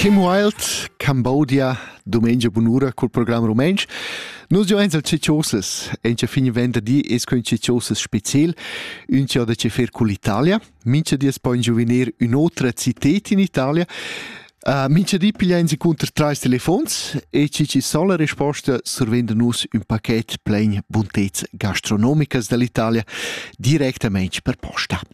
Kim Wilde, Cambodia, dumengia bunura cul program rumentsch. Nus jo eins al cicciosas, en che fin venderdi es quin cicciosas special, un ciò da che fer cul Italia, mincha di es poi giuvenir un'otra citet in Italia. Uh, mincha di piglia in secunder trais telefons e cici sol la risposta survenda nus un paquet plein buntez gastronomicas dall'Italia directamente per posta.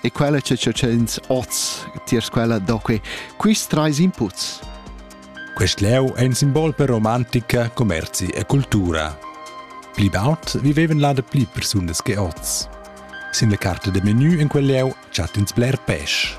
E quella che tschels oz tiers quella do que quist trais inputs. Quest leu è un simbol per romantica, commerzi e cultura. Pli baut vivevan là da pli persunas che oz. Sin la carta de menu in quel leu chatt'ins bler pesch.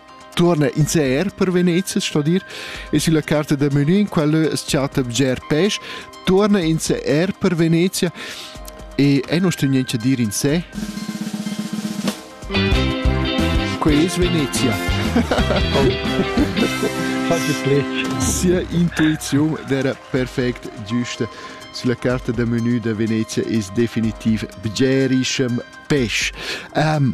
Turna in ser per Venezia sto dir e sulla carta da menu in quella schatta bger pes turna in ser per Venezia e è nostra niente dir in sé Quei es Venezia. Sia intuizione era perfect giusta. Sulla carta da menu da Venezia es definitiv bgerischem pes. Um,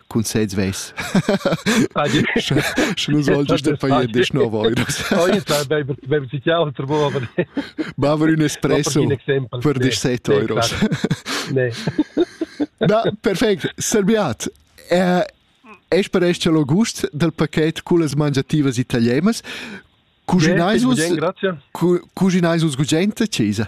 cun sez ves sche nus oltre sta fai de schnova ma aver un espresso per dis 7 euros na perfect serbiat eh es per es lo gust del paquet con las mangiativas italienas cuginais vus cuginais vus gugente cesa